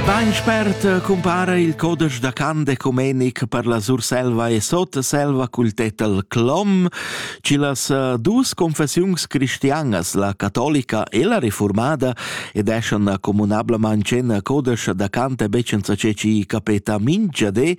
Bain spert cumpara il codesch da Cant ecumenic per la Surselva e Sotselva cul tetel Clom, ci las eh, dus confessiuns cristianas, la catolica e la reformada, ed eschan comunablement in codesch da Cant becenza ce ci capeta mingia de,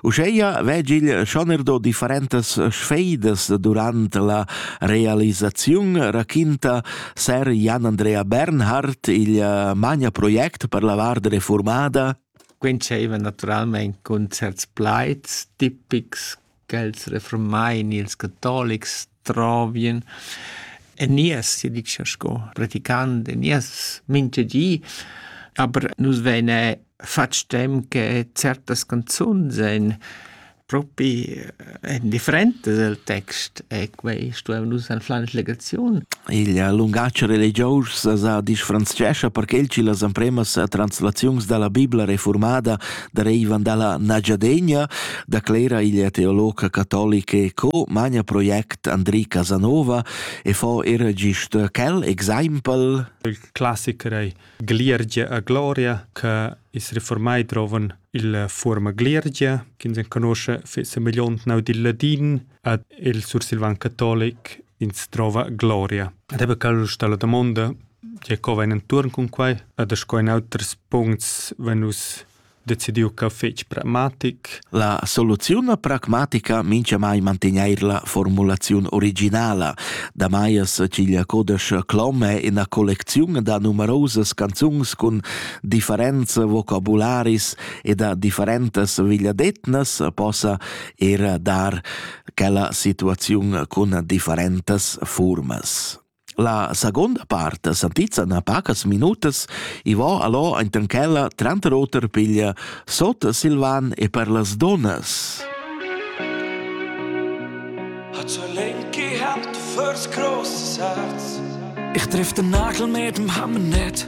uscheia vegil schonerdo differentes sfeidas durant la realisaziun raquinta Ser Jan Andrea Bernhard, il uh, magnaproject per la vart reformada. Quintscheva naturalmente con certs plaids tipics che els reformain ils catolics trovien. E nies, si dice sco praticant, e nies mince gi, aber nus vene fatg tem che certas canzun sen propi en differentes el text e quei stuevan nus anflar legaziun. Il lungatg religius sa disfranzescha perché il ci las empremas translaziuns dalla Bibla reformada derivan dalla Nagiadegna, da Clera il teolog catolic e co magna project Andri Casanova e fa er gist quel exaimpel. Il classiker ei gliiergia a gloria che es reformai drovan illa fuorma gliiergia chi'ns enconoscha semegliont naut il ladin ad il sursilvan catolic ins drova gloria. Ed eba cal sta la damonda tge co vain intuorn cun quai ed sco in auters puncts vegn nus decidiu che fetg pragmatic. La soluziun pragmatica mincha mai mantegneir la formulaziun originala. Da Maiers ciglia codesch Clomme ina collecziun da numerosas canzuns cun differenza vocabularis e da differentas vigliadetnas possa er dar quella situaziun cun differentas formas. La seguonda part santizza na pacas minutas e va allò enten ch'ella tranter oter piglia sot Silvan e per las donnas. Hat so Lenki gehabt fürs großes Herz. Ich triff den Nagel mit dem Hammer nicht.